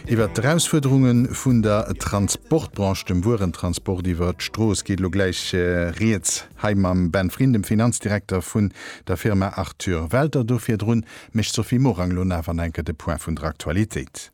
Iwwert d'Erausfuerderunge vun der Transportbranche, dem Wuerentransport iwwer d'Strooss, geet elo gläich Rieds hei mam Ben Vriend, dem Finanzdirekter vun der Firma Arthur Welter. Do virdrun mécht d'Sophie Morang elo nach an enker de Point vun der Aktualitéit.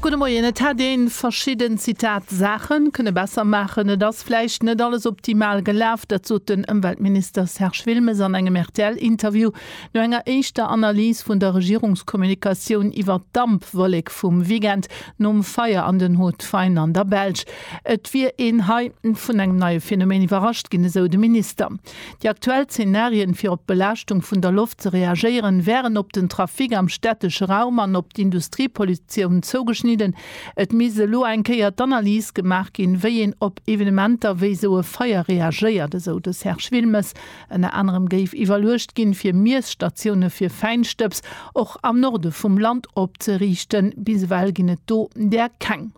Gudde Moien. Et hätt ee verschidden, Zitat, Saache kënne besser maachen. Et ass vläicht net alles optimal gelaf. Dat sot den Ëmweltminister Serge Wilmes an engem RTL-Interview. No enger éischter Analys vun der Regierungskommunikatioun iwwert d'Dampwollek vum Weekend nom Feier an den Hautes-Faines an der Belsch. Et wier een hei vun engem neie Phänomen iwwerrascht ginn, esou de Minister. Déi aktuell Zenarien, fir op d'Belaaschtung vun der Loft ze reagéieren, wären op den Trafic am stättesche Raum an op d'Industriepollutioun zougeschnidden. Et misst elo eng Kéier d'Analys gemaach ginn, wéi een op Evenementer wéi esou e Feier reagéiert, esou de Serge Wilmes. Ënner anerem géif iwwerluecht ginn, fir Miesstatioune fir Fäinstëbs och am Norde vum Land opzeriichten. Bis ewell ginn et do där keng.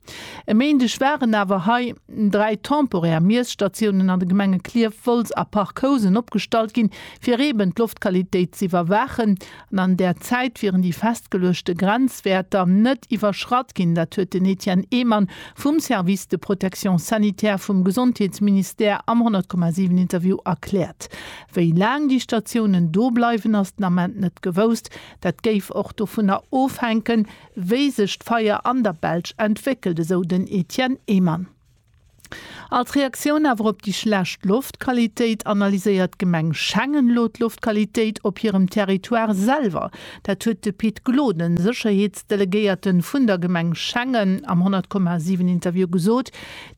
E Méindeg waren awer hei dräi temporär Miesstatiounen an de Gemenge Klierf, Wolz a Parc Housen opgestallt ginn, fir eeben d'Loftqualitéit z'iwwerwaachen An an där Zäit wieren déi festgeluechte Grenzwäerter net iwwerschratt ginn. Dat huet den Etienne Ehmann vum Service de protection sanitaire vum Gesondheetsministère am 100, 7 Interview erkläert. Wéi laang déi Statiounen do bleiwen, ass den Ament net gewousst. Dat géif och dovunner ofhänken, wéi sech d'Feier an der Belsch entwéckelt, esou den Etienne Ehmann. Als Reaktioun awer op déi schlecht Loftqualitéit analyséiert d'Gemeng Schengen elo d'Loftqualitéit op hirem Territoire selwer. Dat huet de Pit Gloden, Sécherheetsdelegéierte vun der Gemeng Schengen am 100, 7 Interview gesot.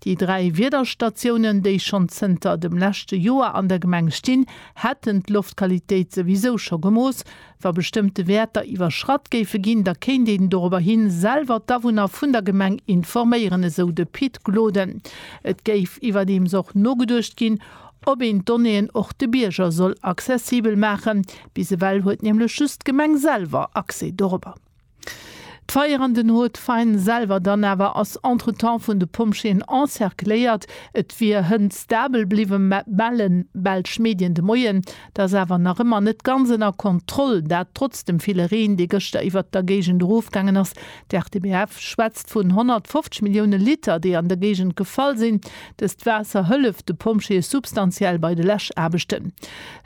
Déi dräi Wiederstatiounen, déi schonn zënter dem leschte Joer an der Gemeng stinn, hätten d'Loftqualitéit souwisou scho gemooss, Wa bestëmmte Wäerter iwwerschratt géife ginn, da kéint een dorobber hin selwer d'Awunner vun der Gemeng informéieren, esou de Pit Gloden. Et géif iwwerdeems och nogeduecht ginn, ob een d'Donnéeën och de Bierger soll accessibel maachen. Bis ewell huet nämlech just d'Gemeng selwer Accès dorobber. D'Feier an den Haut Fine selwer dann awer ass entretemps vun de Pompjeeën encercléiert. Et wier Hënn stabel bliwwen, mä mellen belsch Medien de Moien, dass awer nach ëmmer net ganz ënner Kontroll, dat trotz dem ville Reen, dee gëschter iwwert der Géigend erofgaangen ass. D'RTBF schwätzt vun 150 Millioune Liter, déi an der Géigend gefall sinn. Dëst Waasser hëlleft de Pompjeeë substantiell bei de Läschaarbechten.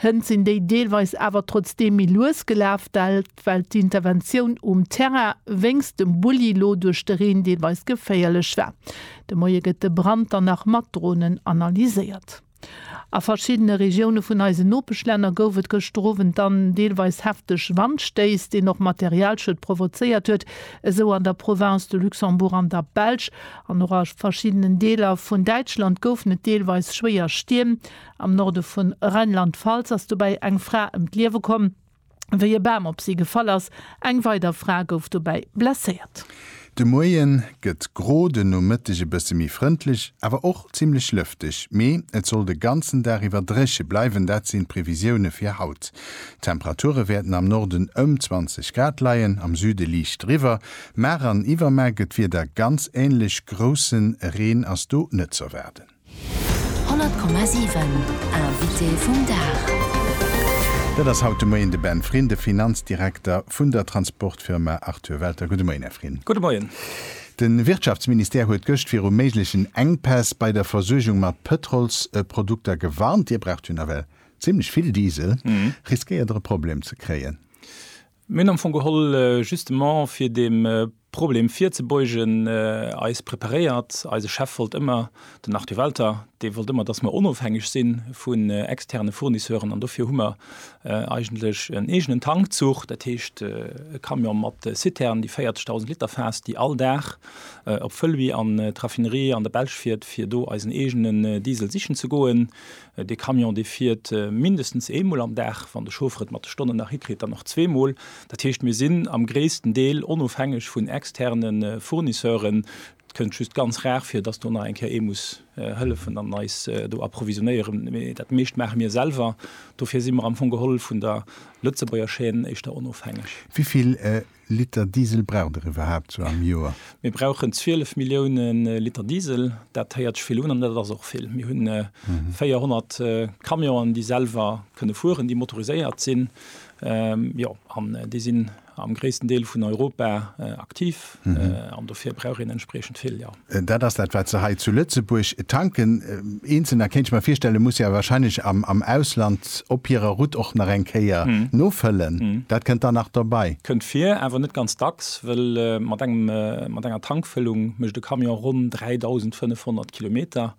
Hënn sinn déi deelweis awer trotzdeem méi lues gelaf, well. well d'Interventioun um Terrain wéinst dem Bulli lo duerch de Reen deelweis geféierlech war. De Moie gëtt de Brand dann nach mat Dronen analyséiert. A verschiddene Regioune vun eisen Nopeschlänner gouf et gëschter Owend dann deelweis hefteg Wandstéiss, deen och Materialschued provozéiert huet, esou an der Province de Luxembourg an der Belsch. An och a verschiddenen Deeler vun Däitschland goufen et deelweis schwéier Stierm. Am Norde vu Rheinland-Pfalz ass dobäi eng Fra ëm d'Liewe komm. wéi e Bam op si gefall ass. Eng weider Fra gouf dobäi blesséiert. De Moien gëtt gro, de Nomëtteg e bësse méi frëndlech, awer och zimmlech lëfteg. Mee et soll de ganzen Dag iwwer dréche bleiwen, dat sinn d'Previsioune fir haut. D'Temperature wäerten am Norden ëm 20 Grad leien, am Süde liicht driwwer. Mar an Iwwermar gëtt d'Wieder ganz änlech, grousse Reen ass do net z'erwaarden. 100,7 Invité vum Dag. Dat ass haut de Moien de Ben Frin, de Finanzdirekter vun der Transportfirma Arthur Welter. Gudde Moien, Här Frin. Gudde Moien. De Wirtschaftsministère huet gëscht viru méiglechen Enkpäss bei der Versuergung mat Pëtrolsprodukter gewarnt. Dir braucht jo nawell zimmlech vill Diesel. Riskéiert Der e Problem ze kréien? Mir hunn am Fong geholl, justement fir deem Problem virzebeugen, eis preparéiert. Eise Chef wollt ëmmer, den Arthur Welter, dee wollt ëmmer, dass mer onofhängeg si vun externe Fournisseuren. An dofir hu mer eigentlech en eegenen Tank gezucht, dat heescht e Camion mat Citernen, déi 40.000 Liter faasst, déi all Dag op Fëlwi an d'Raffinerie an der Belsch fiert, fir do eisen eegenen Diesel sichen ze goen. Dee Camion, dee fiert mindestens eemol am Dag, wann de Chauffer et mat de Stonnen nach hikritt, dann och zweemol. Dat heescht, mir sinn am gréissten Deel onofhängeg vun externe Fournisseuren. Et kënnt just ganz rar vir, dass do nach eng Kéier ee muss hëllefen an eis do approvisionnéieren, mee dat meescht maache mir selwer. Dofir si mer am Fong geholl vun der Lëtzebuerger Chaîne éischter onofhängeg. Wéi vill Liter Diesel braucht der iwwerhaapt sou am Joer? Mir brauchen 12 Millioune Liter Diesel. Dat héiert sech vill un an dat ass och vill. Mir hunn 400 Camionen, déi selwer kënne fueren, déi motoriséiert sinn, jo, an déi sinn am gréissten Deel vun Europa aktiv an dofir brauch een entspriechend vill, jo. Dat ass dat, wat se hei zu Lëtzebuerg tanken. Eenzelner, kéint ech mer virstellen, muss jo wahrscheinlech am Ausland op hirer Route och nach eng Kéier nofëllen. Dat kënnt dann nach dobei. Kënnt vir, awer net ganz dacks, well mat enger Tankfëllung mécht e Camion ronn 3.500 Kilometer.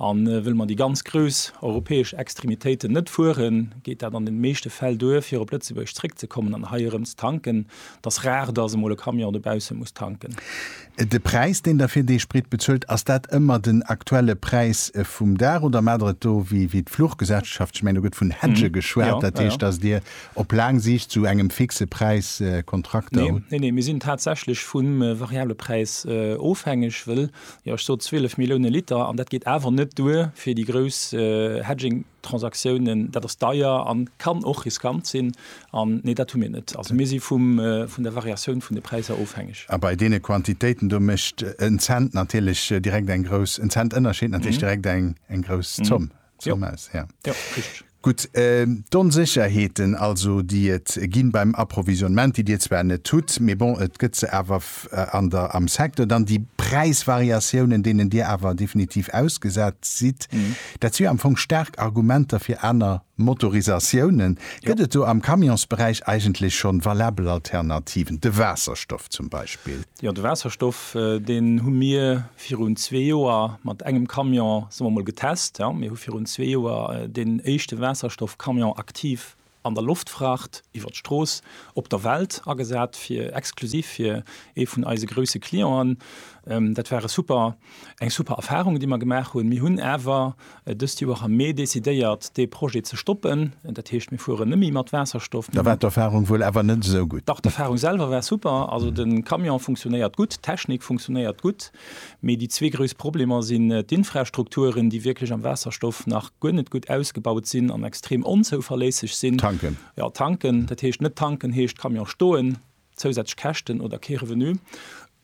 A wëll mer déi ganz grouss europäesch Extremitéiten net fueren, geet dat an de meeschte Fäll duer, fir op Lëtzebuerg zréckzekommen an hei erëm ze tanken. Et ass rar, dass emol e Camion dobausse muss tanken. De Präis, deen Der fir dee Sprit bezuelt, ass dat ëmmer den aktuelle Präis vum Dag oder maacht Der et do wéi d'Fluchgesellschaft? Ech mengen, do gëtt vun Hedge geschwat, dat heescht, dass Dir op laang Siicht zu engem fixe Präis Kontrakter hutt. Neen, neen, mir sinn tatsächlech vum variable Präis ofhängeg, wëll Jo, ech sot 12 Millioune Liter an dat geet awer net duer fir déi grouss Hedging-Transaktiounen. Dat ass deier a kann och riskant sinn. An nee, dat hu mir net. Also mir si vum, vun der Variatioun vun de Präisser ofhängeg. A bei deene Quantitéiten do mécht en Cent natierlech direkt eng grouss, en Cent Ënnerscheed natierlech direkt eng, eng grouss Zomm. Jo. Maus, ja. Jo, richteg. Gutt, d'Onsécherheeten also, déi et ginn beim Approvisionnement, déi Dir zwar net hutt, mee bon, et gëtt se awer an der, am Secteur, dann déi Präisvariatiounen, deenen Dir awer definitiv ausgesat sidd, dat si jo am Fong staark Argumenter fir aner Motorisatiounen. Gëtt et do am Camionsberäich eigentlech schonn valabel Alternativen, de Waasserstoff zum Beispill? Jo, de Waasserstoff, deen hu mir virun zwee Joer mat engem Camion, soe mer mol, getest. Mir hu virun zwee Joer deen éischte Waasserstoff-Camion aktiv an der Loftfracht iwwert d'Strooss op der Welt agesat, fir exklusiv fir ee vun eise grouse Clienten. Dat war e super, eng super Erfarung, déi mer gemaach hunn. Mir hunn awer. Dëst Joer hu mir decidéiert, dee Projet ze stoppen. Dat heescht, mir fueren neméi mat Waasserstoff. Da war d'Erfahrung wuel awer net esou gutt? Dach, d'Erfahrung selwer war super. Also de Camion funktionéiert gutt, d'Technik funktionéiert gutt. Mee déi zwee grouss Problemer sinn d'Infrastrukturen, déi wierklech am Waasserstoff nach guer net gutt ausgebaut sinn an extrem onzouverléisseg sinn. Tanken? Jo, tanken. Dat heescht, net tanken heescht Camion stoen. zousätzlech Käschten oder kee Revenu.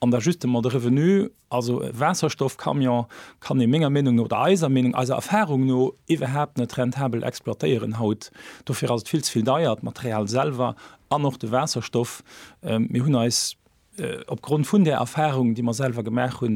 An da just emol de Revenu, also e Waasserstoffcamion kann ee menger Meenung no, oder eiser Meenung, eiser Erfahrung no iwwerhaapt net rentabel exploitéieren haut. Dofir ass et vill ze vill deier, d'Material selwer an och de Waasserstoff. Mir hunn eis opgrond vun där Erfahrung, déi mer selwer gemaach hunn,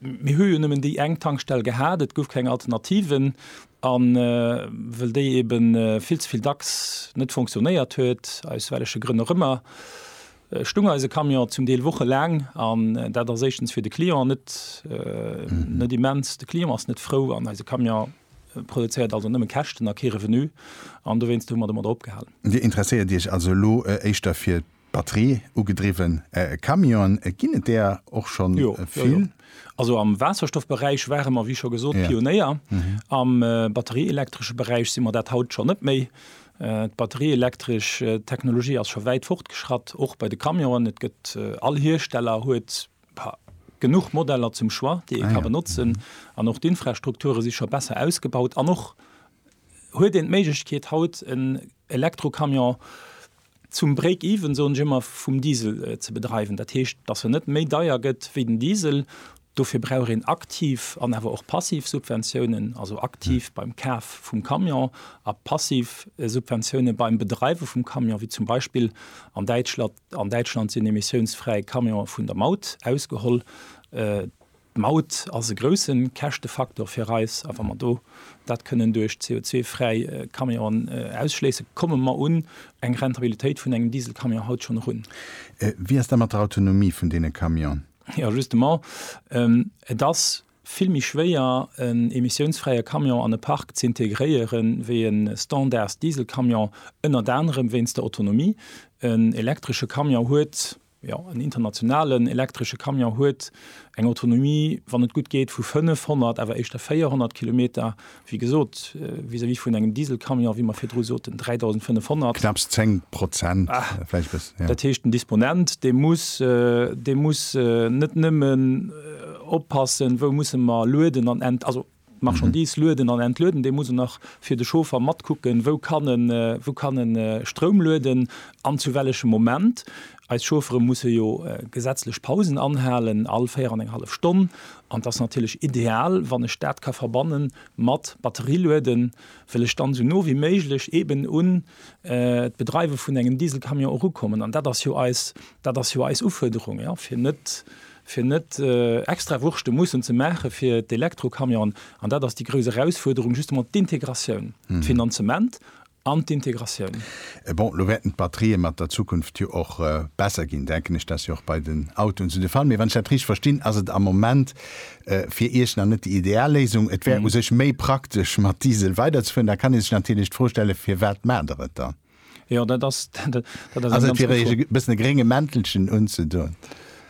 Mir hu jo nëmmen déi eng Tankstell gehat, et gouf keng Alternative, a wëll déi ebe vill ze vill dacks net fonctionnéiert huet, aus welleche Grënn och ëmmer, stung eise Camion zum Deel wochelaang. An dat ass éischtens fir de Client net net immens, de Client ass net frou an eise Camion produzéiert also nëmme Käschten a kee Revenu. An dowéinst hu mer domadder opgehalen. Dir interesséiert Iech also elo éischter fir Batterie ugedriwwen Camionen, ginn et där och scho vill? Also am Waasserstoffberäich ware mer, wéi scho gesot, Pionéier. Am batterieelektresche Beräich si mer dat haut scho net méi. D'batterieelektresch Technologie ass scho wäit fortgeschratt, och bei de Camionen. Et gëtt, all Hiersteller huet genuch Modeller zum Choix, déi ee ka benotzen. An och d'Infrastrukture si scho besser ausgebaut. An och huet een d'Méiglechkeet haut en Elektrocamion, zum Break-Even, soen ech ëmmer, vum Diesel ze bedreiwen. Dat heescht, dass en net méi deier gëtt wéi den Diesel. Dofir brauch een aktiv an awer och passiv Subventiounen, also aktiv beim Kaf vum Camion a passiv Subventiounen beim Bedreiwe vum Camion, wéi zum Beispill an Däitschland. An Däitschland sinn emissiounsfräi Camionen vun der Maut ausgeholl. D'Maut ass e grousse Käschtefaktor fir eis, a wa mer do dat kënnen duerch CO2-fräi Camionen ausschléissen, komme mer un eng Rentabilitéit vun engem Dieselcamion haut schonn erun. Wéi ass dat mat der Autonomie vun deene Camionen? Jo, justement, et ass vill méi schwéier, en emissiounsfräie Camion an e Park ze integréieren, wéi e Standards-Dieselcamion, ënnert anerem wéinst der Autonomie. En elektresche Camion huet Jo, en internationalen elektresche Camion huet eng Autonomie, wann et gutt geet, vu 500, awer éischter 400 Kilometer, wéi gesot, vis-à-vis vun engem Dieselcamion, wéi mer virdru soten, 3.500. Knapps 10 Prozent, vläicht e bëssen, jo. Dat heescht, den Disponent, dee muss, dee muss net nëmmen oppassen, wou musse mer lueden an ent, also, D'Marchandise lueden an entlueden, dee muss en nach fir de Chauffer matkucken, wou kann e wou kann e Stroum lueden an zu wellechem Moment. Eis Chauffere musse jo gesetzlech Pausen anhalen, all véier an eng hallef Stonn. An et ass natierlech ideal, wann ech dat ka verbanne mat Batterie lueden, well ech dann esou no wéi méiglech eeben un d'Bedreiwe vun engem Dieselcamion erukommen. An dat ass jo eis dat ass jo eis Ufuerderung, jo, fir net fir net extra Wurschte mussen ze maache fir d'Elektrocamionen, an dat ass déi grouss Erausfuerderung, justement d'Integratioun, d'Finanzement an d'Integratioun. Bon, elo wäerten d'Batterië mat der Zukunft jo och besser ginn, denken ech, dat ass jo och bei den Autoen esou de Fall. Mee wann ech dat richteg verstinn, ass et am Moment fir Iech nach net déi ideal Léisung. Et wär u sech méi praktesch mat Diesel weiderzefueren. Da kann ee sech natierlech d'Fro stellen, Firwat maacht Der et dann? Jo, dat ass, dat ass eng ganz gutt Fro. Also et wier e bëssen e grénge Mäntelchen unzedoen.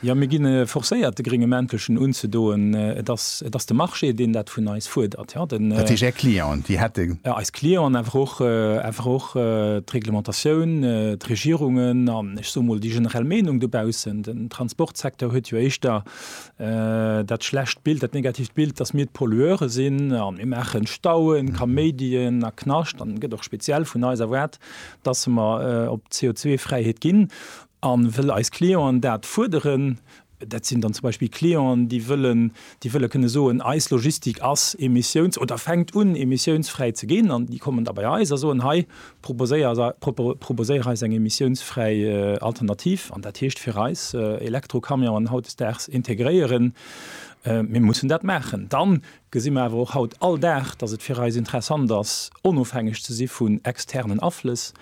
Jo, mir ginn forcéiert de grénge Mäntelchen unzedoen. Et ass, et ass de Marché deen dat vun eis fuerdert, jo. Dat heescht Är Clienten, déi hätte. Jo, eis Clienten, awer och, awer och d'Reglementatioun, d'Regierungen an, ech soe mol, déi generell Meenung dobaussen. Den Transportsecteur huet jo éischter Dat schlecht Bild, dat negatiivt Bild, dass mir d'Pollueure sinn a mir maachen Stauen, Kaméidien a Knascht an gëtt och speziell vun eis erwaart, dass mer op d'CO2-Fräiheet ginn. A wëll eis Clienten dat fuerderen, dat sinn dann zum Beispill Clienten, déi wëllen, déi wëlle kënne soen, eis Logistik ass emissiouns oder fänkt un emissiounsfräi ze ginn an déi kommen da bei eis a soen, hei Proposéier eis eng emissiounsfräi Alternativ, an dat heescht fir eis, Elektrocamionen hautdesdaags integréieren. Mir mussen dat maachen. Dann gesi mer awer och haut all Dag, dass et fir eis interessant ass, onofhängeg ze si vun externen Aflëss.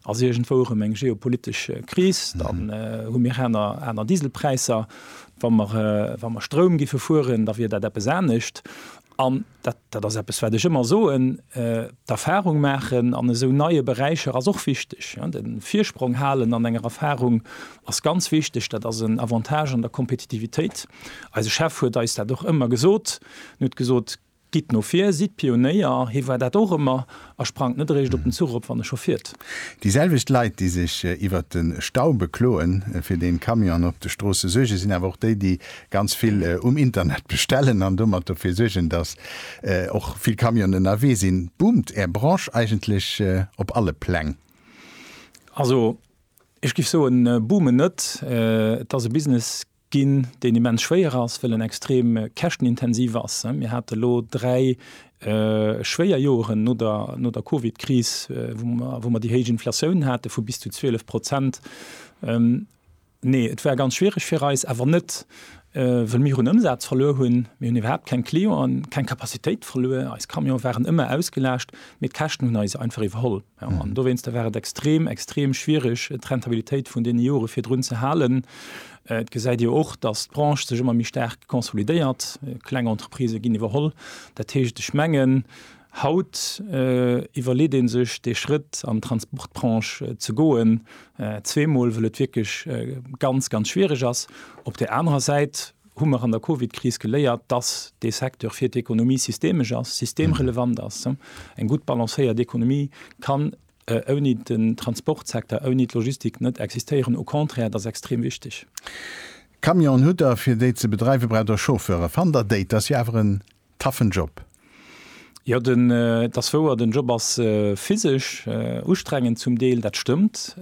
Ass iergendwou erëm eng geopolitesch Kris, dann hu mir aner Dieselpräisser. Wa mer Stroum géife fueren, da wier dat eppes anescht. dat, dat ass eppes, wat ech ëmmer soen, d'Erfahrung maachen an esou neie Beräicher ass och wichteg. De Virsprong halen an enger Erfahrung ass ganz wichteg. Dat ass en Avantage an der Kompetitivitéit. Eise Chef huet eis dat och ëmmer gesot. En huet gesot, Gitt no vir, sidd Pionéier. Hie war dat och ëmmer. a sprangt net eréischt op den Zuch op, wann e scho fiert. Déi selwecht Leit, déi sech iwwert de Stau bekloen, fir dee Camionen op de Stroosse suergen, sinn awer och déi, déi ganz vill um Internet bestellen an domat dofir suergen, datt och vill Camionen ënnerwee sinn. Boomt Är Branche eigentlech op alle Pläng? Also ech géif soen, boomen net. Et ass e Business, ginn, deen immens schwéier ass, wëll en extrem käschtenintensiv ass. Mir hate lo dräi schwéier Joeren no der Covid-Kris, wou mer déi héich Inflatioun hate vu bis zu 12 Prozent. Nee, et war ganz schwiereg fir eis, awer net, wëll mir hunn Ëmsaz verluer hunn, mir hunn iwwerhaapt keng Clienten, keng Capacitéit verluer, eis Camione waren ëmmer ausgelaascht, mee d'Käschten hunn eis einfach iwwerholl. An dowéinster war et extrem, extrem schwierig, d'Rentabilitéit vun deene Jore virdrun ze halen. Et gesäit Dir och, dass d'Branche sech ëmmer méi staark konsolidéiert. Kleng Entreprisë ginn iwwerholl. Dat heescht, ech mengen, haut iwwerleet ee sech, dee Schrëtt an d'Transportbranche ze goen, zweemol, wëll et wierklech ganz, ganz schwierig ass. Op där anerer Säit. hu mer an der Covid-Kris geléiert, dass dee Secteur fir d'Ekonomie systemesch ass, systemrelevant ass. Eng gutt balancéiert Ekonomie kann ouni den Transportsecteur, ouni d'Logistik net existéieren. Au contraire, et ass extrem wichteg. Camionen hutt Der, fir déi ze bedreiwen, braucht Der Chauffeuren. Fannt Der déi? Dat ass jo awer en taffen Job. Jo den dass wouer, den Job ass physesch ustrengend zum Deel, dat stëmmt.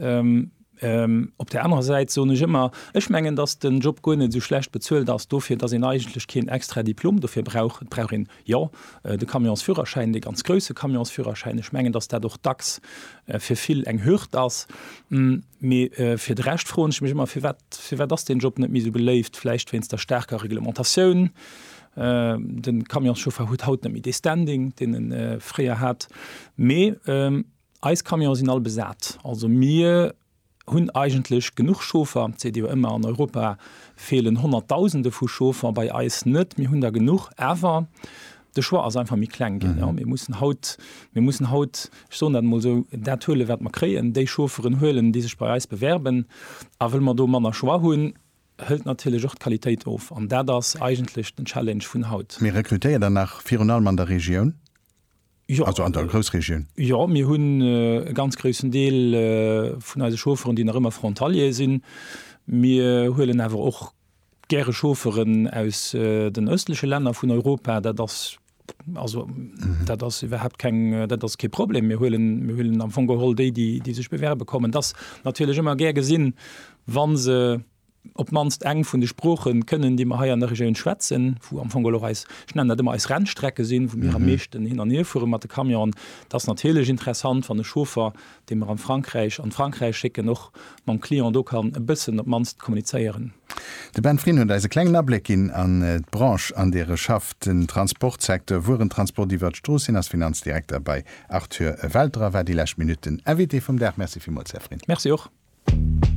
Op der anerer Säit soen ech ëmmer, ech mengen dass den Job guer net esou schlecht bezuelt ass dofir dass een eigentlech keen extra Diplom dofir brauch. Et brauch een jo de Camionsführerschäin, dee ganz grousse Camionsführerschäin. Ech mengen dass dat och dacks fir vill eng Hürd ass. Mee fir de Rescht froen ech mech ëmmer firwat, firwat ass deen Job net méi esou beléift? Vläicht wéinst der staarker Reglementatioun, De Camionschauffer huet haut net méi dee Standing, deen e fréier hat. Mee eis Camione sinn all besat. Also mir hunn eigentlech genuch Chauffer. Et seet ee jo ëmmer, an Europa feelen Honnertdausende vu Chauffer. Bei eis net, mir hunn der genuch. Awer de Choix ass einfach méi kleng ginn. Mir mussen haut, mir mussen haut, ech soen dat emol esou, dat huelen, wat mer kréien, déi Chaufferen huelen, déi sech bei eis bewerben. A wëll mer do manner Choix hunn, hëlt natierlech och d'Qualitéit of an dat ass eigentlech den Challenge vun haut. Mee rekrutéiert der nach virun allem an der Regioun, also an der Groussregioun? Jo, mir hunn e ganz groussen Deel vun eise Chaufferen, déi nach ëmmer Frontalier sinn. Mir huelen awer och gäre Chaufferen aus den ëstleche Länner vun Europa. Dat ass. Also dat ass iwwerhaupt keng, dat ass kee Problem. Mir huelen, mir huelen am Fong geholl déi, déi, déi sech bewerbe kommen. Dass natierlech ëmmer gär gesinn, wa se op d'mannst eng vun de Sprooche kënnen, déi mer hei an der Regioun schwätzen, wou am Fong geholl och eis, ech nennen dat ëmmer eis Rennstrecke sinn, wou mir am meeschten hin an hierfuere mat de Camionen. Dat ass natierlech interessant, wann e Chauffer dee mer an Frankräich an Frankräich schécken, och mam Client do kann e bëssen op d'mannst kommunizéieren. De Ben Frin huet eis e klengen Abléck ginn an d'Branche, an deer e schafft, den Transportsecteur, Wuerentransport iwwert d'Strooss. Hien ass Finanzdirekter bei Arthur Welter a war déi lescht Minutt den Invité vum Dag. Merci villmools, Här Frin. Merci och. Merci.